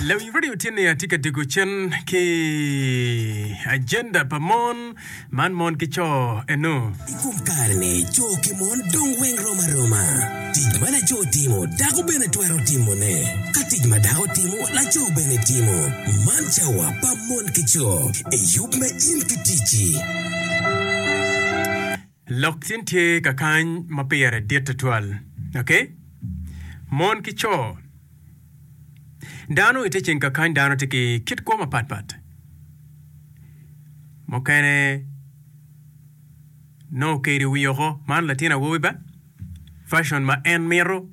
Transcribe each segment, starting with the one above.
Lawiny radio tye ni atye ka dego cen ki agenda pa mon man mon ki co eno. I kom kare-ni, co ki mon dong weng rom aroma. Tic ma laco timo, dako bene twero timone. Ka tic ma dako timo, laco bene timo. Man cawa pa mon ki co. Eyub me in ki ticci. Lok cen tye ka kany ma pire dit tutwal. Ok. Mon ki co. Dano i te ceng ka kany dano tye ki kit kwo mapat pat. Mukene nongo keri wi oko, man latin awobi ba, fashion ma en mito.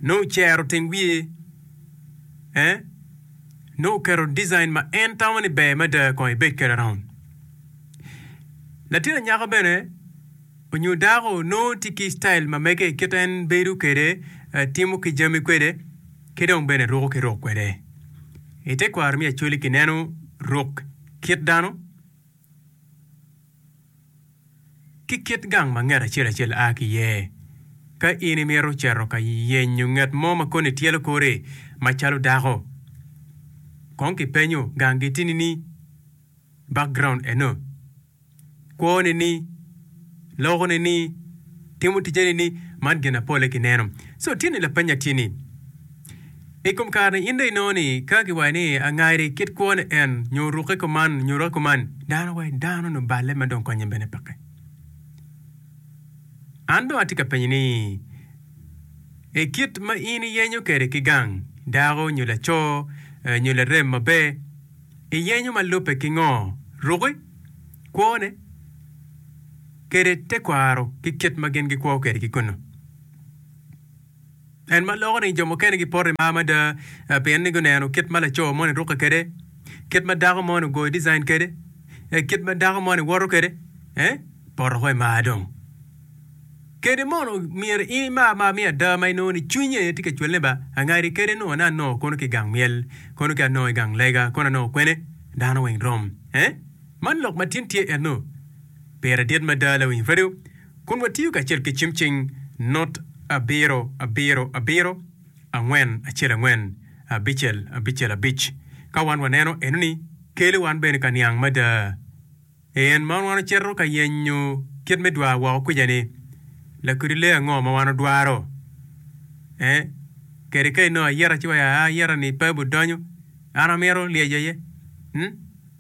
Nongo ocero teng wiye, eh? Nongo oketo design ma en tamo ni ber mada kong ibed kwede around. Latin anyaka bene onyo dako nongo tye ki style ma mege kit en bedo kwede, eh, timo ki jami kwede, ki dong bene ruko ki ruk kwede. I tekwaro me Acholi kineno ruk kit dano. ki kit gang ma nget acel acel a ki iye. Ka in imito cito ka yenyo nget mo ma koni tyelo kori macalo dako, kong kipenyo gang gitini ni, Background eno? Kwone ni? Loko ne ni? Timo tije ne ni? Man gin na pole kineno. So tye ni lapenya tye ni. I kom kare-ni, in dong inongo ni ka kiwaco ni angari kit kwone en, nyo rukke kuman, nyo rukke kuman, dano wa i dano onongo balle ma dong konye bene peke. An dong atye ka penyo ni, i kit ma in iyenyo kwede ki gang dako nyo laco eh, nyo larem maber, iyenyo ma lubbe ki ngo? Rukke, kwone, kede tekwaro ki kit ma gin gikwo kwede ki kunnu? En ma loko ni jo mukene gipoto i mar mada pien ni guneno kit ma laco moni rukke kwede, kit ma dako moni ogoyo design kwede, kit ma dako moni woto kwede. Eh, poto ko i mar dong! Kede mono myero in imar mar me ada ma inongo ni cwinyi aye tye ka cwelle ba, angadi kede nongo ni anongo kono ki i gang myel, kono ki anongo i gang lega, kono anongo kwene? Dano weng rom. Eh, man lok matin tye enno. Pire dit mada, Lawiny Fredo. Kun watiyo kacel ki cim cing not abiro abiro abiro angwen acel angwen abicel abicel abic. Ka wan waneno eno ni kele wan bene ka niang mada en man wan ocito ka yenyo kit me dwa woko kwica ni lakodi lee ango ma wan odwaro eh kede ka inongo ayeta ci waya ayeta ni pe bu donyo an amito lyeco aye mm.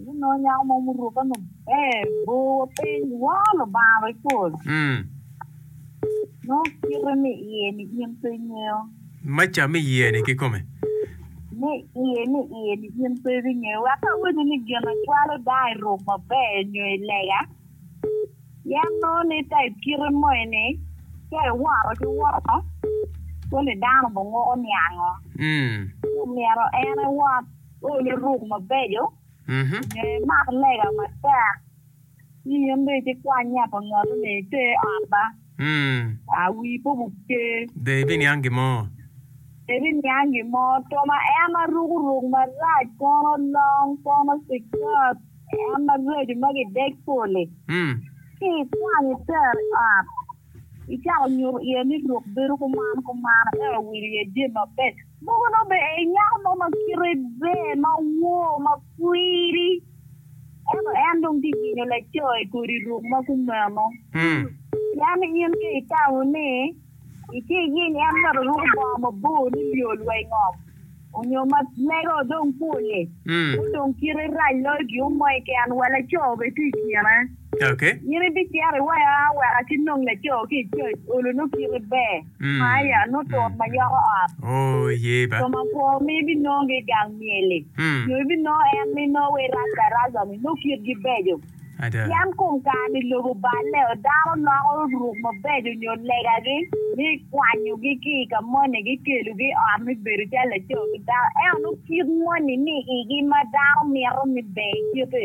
Gunongo nyako mo muruke maber, bor wa piny, woo Lubanga wa i pol. Nongo kite me iye-ni in pe ingeyo. Maca me iye-ni kikome. Me iye me iye-ni in pe ibingeyo. Wek ka awinyo ni gin acwalo dang iruk maber nyo ilega, pien nongo ni ka i kite moni ka iwoto ki woko, koni dano obinguko niango? Ci omyero en ewot. Ol luruk mabeco, nyo imak lega matek, ci in dong iti kwany yat ongolone i te ot ba, a wii pe obubce. Be ibiniang gin mo? Pe ibiniang gin mo. To ma en ma ruko ruk marac, kono long, kono cikat, en maraco ma gidek pol-li, ci ikwanyo i ter ot, icako nyuto iye ni ruk bedo kuman kuman, ento wil iye jami mabeco. Mogo nongo be ei nyako mo ma kite ber ma wor ma kwiri, ento en dong tye yinyo laco i kodi ruk ma kumeno. Pien in ka itamo ni itye iyiny en myero oruku bongo mabor ni lyol wa i ngom, onyo ma lege o dong pol-li, ma odong kite rac loyo gin mo mo keken, wa laco be tye i kine. In ibicito iwaya wek aci nong laco ki i cwec olo nongo kite ber. Maia nongo tut ma yoko ot. Thum akwo mi ibinongo-gi i gang myel-li, nyo ibinongo en mi nongo wa i rac-daraja-ni, nongo kitgi beco. Pien kom kare-ni lobo balle, dano loko ruk mabeco nyo legagi mi kwanyogi ki i ka moni ki kelogi i ot mi bedo calo laco ki dako. Ento nongo kit moni ni igi ma dano mito ni ber kite.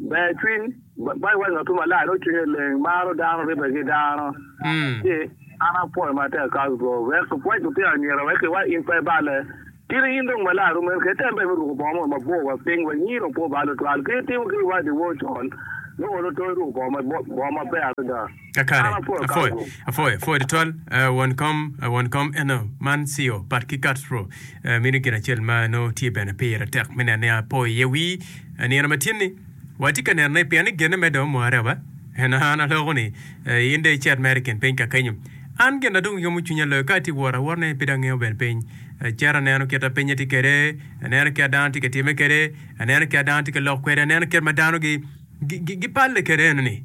Ber cwiny, Baibul waco ngat mo malac dok cwinye leng, maro dano, ribbe ki dano, ci an apwoyo matek kas go. Wek kipwoc lutino anyira wek kiwal in pe balle. Tini in dong malac rom meno kede, tem bene me ruko bongo moni mabor wa piny wek nyi dong pe obal tutwal. Kit itimo ki wadiwo con, nongo lutoni ruko bongo maber adada. Kakare, apwoyo, apwoyo, apwoyo tutwal, uh, won kom, uh, won kom eno, man Cio, pat ki Castro, uh, meno gin acel ma nongo tye bene pire tek me neno ni apo iye wii, uh, nino ma tyen-ni. Watye ka neno ni pien ni genne mere dong omware aba, en an aloko ni, uh, in dong icit mere i kin piny ka kenyo. An gin na dong yomo cwinya loyo ka atye wot awot ne pe dong angeyo bene piny. Acito aneno kit ma pinye tye kede, aneno kit ma dano tye ka timme kede, aneno kit ma dano tye ka lok kwede, aneno kit ma dano gi, gi, gi, gipalle kede eno ni.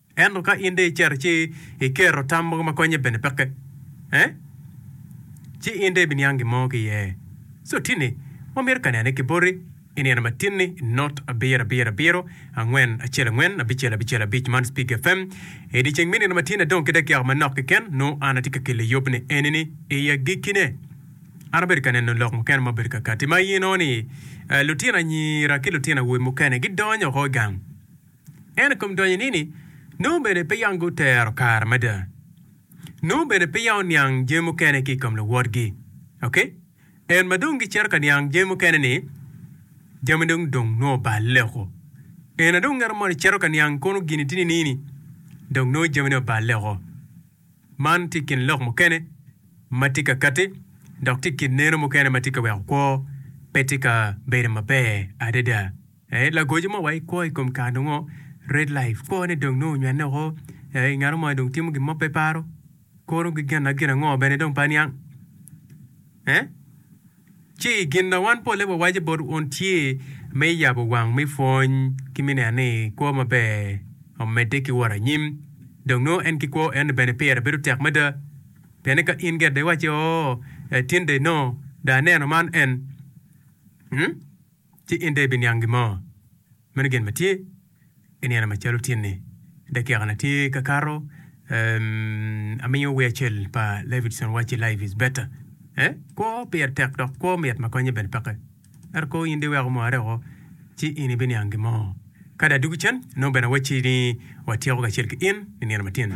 Ento ka in dong icito ci iketo tam mogo ma konye bene peke, eh? Ci in dong ibiniang gin mo ki iye. So tini, wamito ka nene ki boti i nino matin-ni i not abiro abiro abiro angwen acel angwen abicel abicel abic man Speak FM. I dyeceng me nino matin-ni adong ki dakiaka manok keken, nongo an atye ka kelo yubni eni-ni i agikkine. An abedo ka neno lok mukene ma obedo kakatti ma i nino-ni, eh, lutino anyira ki lutino awobe mukene gidonyo oko i gang. Ento i kom donyo nini, nongo bene peya gutero kare mada. Nongo bene peya oniang jami mukene ki i kom luwotgi. Ok. En ma dong gicito ka niang jami mukene ni, jami dong dong nongo oballe oko. En na dong ngeto moni cito ka niang kono gin itini nini, dong nongo jamine oballe oko. Man tye kin lok mukene ma tye ka kati dok tye kin neno mukene ma tye ka weko kwo pe tye ka bedo maber adada. Ee, lagoco ma wa ikwo i kom kare nongo red life kwone dong nongo onywanne woko. Ee, ngat mo ma dong timo gin mo pe paro, kuro ki gin gin ango bene dong pe aniang. Ee, ci gin ma wan polle wawaco bot wun tye me yabo wang me pwony ki me neno ni kwo maber omedde ki wot anyim. Dong nongo en ki kwo eno bene pire bedo tek mada. Pienni ka in gire iwacci, Oo, ee, tin dong nongo dong aneno man en. Hum? ci in dong ibiniang gin mo. Meno gin ma tye, giniang macalo tyen-ni, dakikana tye ka kato. Amiyo wer acel pa Leifridson wacci Life is Better. Eh, kwo pire tek dok kwo mit ma konye bene peke. Ento kong in dong iwek omore woko, ci in ibiniang gin mo. Kadi adwogi cen, nongo bene awacci ni watyeko kacel ki in i nino matyen.